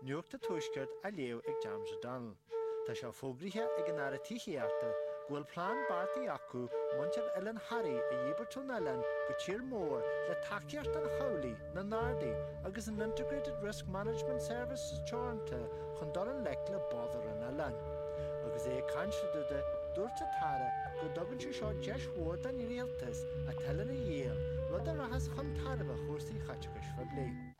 Nuacht Tuaisceart á léamh ag James O'Donnell Tá sé fógraithe ag an Aire Tithíochta go bhfuil plean beartaithe acu muintir Oileán Thoraí a dhíbirt ón oileán go tír mór le tacaíocht an chabhlaigh, na nGardaí agus an Integrated Risk Management Services Teoranta chun dul i ngleic le bodairí an oileáin. Agus é ag caint fá dtaobh de, dúirt an tAire go dtugann sé seo deis mhór don Rialtas an t-oileán a dhíol, rud a rachas chun tairbhe chúrsaí chais phoiblí.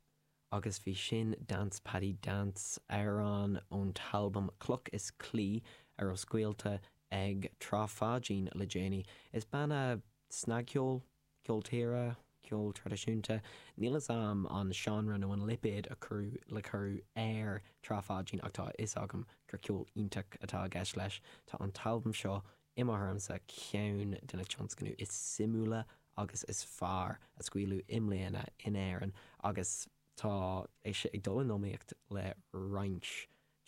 Agus bhí sin, Dance Paddy Dance, amhrán ón t-albam Cloch is Claí, a raibh scaoilte ag Trá Pháidín le déanaí. Is banna snagcheoil, ceol tíre, ceol traidisiúnta, níl 'fhios a'm an seánra nó an lipéad a cuireadh le cuireadh ar Trá Pháidín ach tá a fhios agam gur ceol iontach atá i gceist leis. Tá an t-albam seo I mo thuairimse, ceann de na tionscnaimh is suimiúla agus is fearr a scaoileadh i mbliana in Éirinn agus tá sé ag dul in iomaíocht le roinnt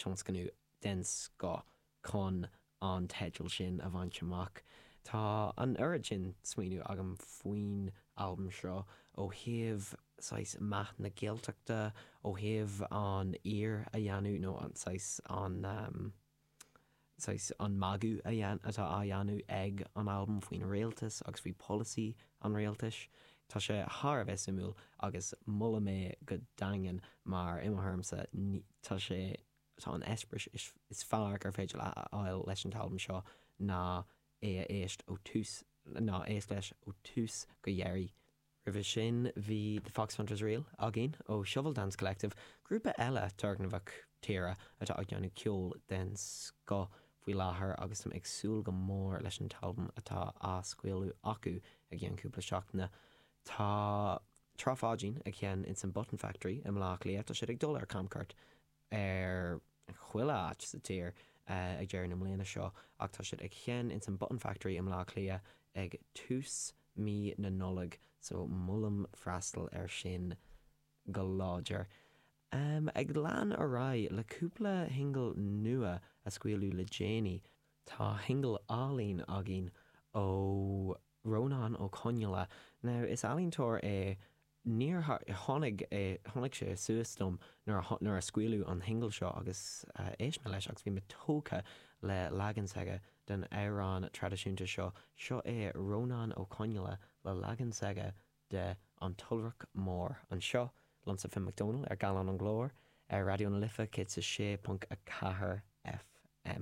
tionscnamh den scoth chun an teideal sin a bhaint amach. Tá an oiread sin smaoineamh agam faoin albam seo, ó thaobh saghas meath na Gaeltachta, ó thaobh an aoir a dhéanamh nó saghas an. saghas an magadh a dhéan, atá á dhéanamh ag an albam faoin rialtas agus faoi polasaí an rialtais. Tá sé thar a bheith suimiúil agus molaim é go daingean mar, i mo thuairimse, ní, tá sé, tá an eispéireas is fearr gur féidir leat a fháil leis an t-albam seo ná é a éist ó tús, ná éist leis ó tús go dheiridh. Roimhe sin bhí The Foxhunters Reel againn ó Shovel Dance Collective, grúpa eile turgnamhach tíre atá ag déanamh ceol den scoth faoi láthair agus táim ag súil go mór leis an t-albam atá á scaoileadh acu i gceann cúpla seachtaine. Tá Trá Pháidín ag seinm insan Button Factory i mBleá Cliath, tá siad ag dul ar camchuairt ar chuile áit sa tír ag deireadh na mbliana seo ach tá siad ag seinm ins an Button Factory i mBleá Cliath ag tús mí na Nollag so molaim freastal ar sin go láidir. Ag lean ar aghaidh le cúpla shingil nua a scaoileadh le déanaí, tá shingil álainn againn ó Rónán Ó Conghaile now is ealaíontóir é Níor tháinig, tháinig sé suas dom nuair a, nuair a scaoileadh an singil seo agus éist mé leis agus bhí mé tógtha le leagan s'aige den amhrán traidisiúnta seo. Seo é Rónán Ó Conghaile le leagan s'aige de An tIolrach Mór anseo liomsa Finn McDonald ar Gallán an Ghlóir ar Raidió na Life 106.4 FM.